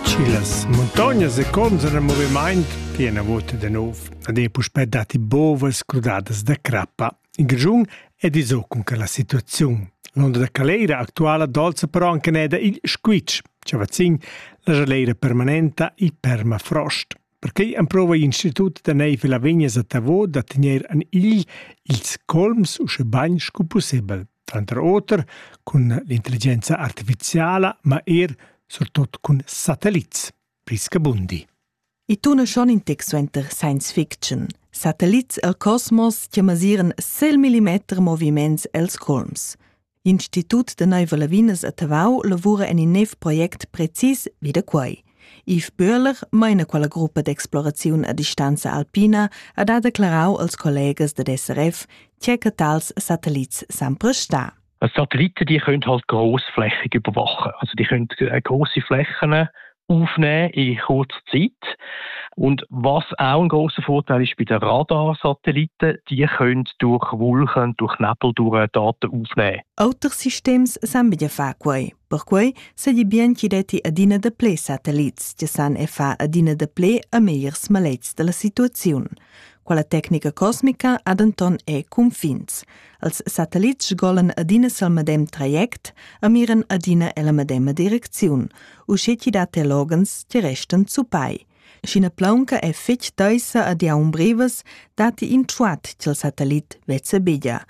Schi las muntognas e cons en il movimaint che ena vota da nov ad ei puspè dati bovas crudadas da crappa. In grigiun è diso cun che la situaziun. L'onda da caleira actuala dolza però anche neda il squitsch, chavazin, la jaleira permanenta il permafrost. Perquei emprova l'Institut da neiv la Vegnas a Tavo da tener en igl ils colms usche bagn sco pussebel, tranter oter cun l'intelligenza artificiala, ma er surtot cun satellits, priscabundi. I tuna schon in tic suenter science fiction. Satellits el cosmos che masiran sel millimeter moviments els colms. Institut de Neiva Lavinas a Tavau lavura en in nov project precis vi da quei. Yves Böhler meina quella gruppa d'exploraziun a distanza alpina ha da declarau als collegas da DSRF tge che tals satellits san prestar. Satelliten die können halt grossflächig überwachen. Also die können äh, große Flächen aufnehmen in kurzer Zeit. Und was auch ein großer Vorteil ist bei den Radarsatelliten, die können durch Wolken, durch Nebel durch Daten aufnehmen. Auter systems san bidia fa quei. Perquei se di bien chi detti adina de ple satelits, che san e fa adina de ple a megliers malets della situaziun. Quella tecnica cosmica ha denton e cunfins. Els satellits sgolan adina sil medem traject e miran adina ella medema direcziun, uscheti dat loghens ti restan zupai. Sch'ina plaunca è fetg taisa ad iaun brevas, datti in truat til satellit vezebeglia,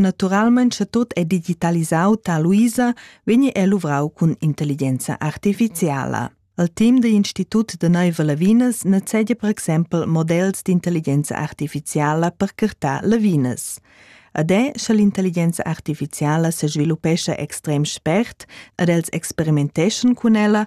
Naturalmein sche tut è digitalisau ta Luisa vegni è luvrau cun intelligenza artificiala. Al team da Institut da Neiva Lavinas necede per exempel models d'intelligenza artificiala per curtar Lavinas. Ad è, sche l'intelligenza artificiala se sviluppescha extrem spert, ad els experimenteschan cun ella,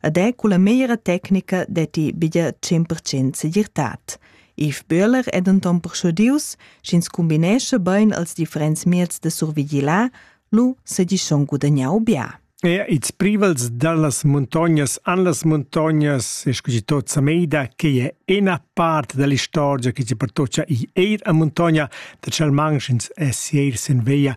ed è culla meglra tecnica detti bia 100% segirtad. Yves Böhler è denton persuadius, sch'ins combinesce bein als differents mieds de survigilar, lu segi schon gudagnau bia. E ils privels dallas muntognas an las muntognas e scusi tot sa meida che è ena part dell'istorgia che ci pertocca i eir a muntogna da Chalmanchins e Sieir sen Veia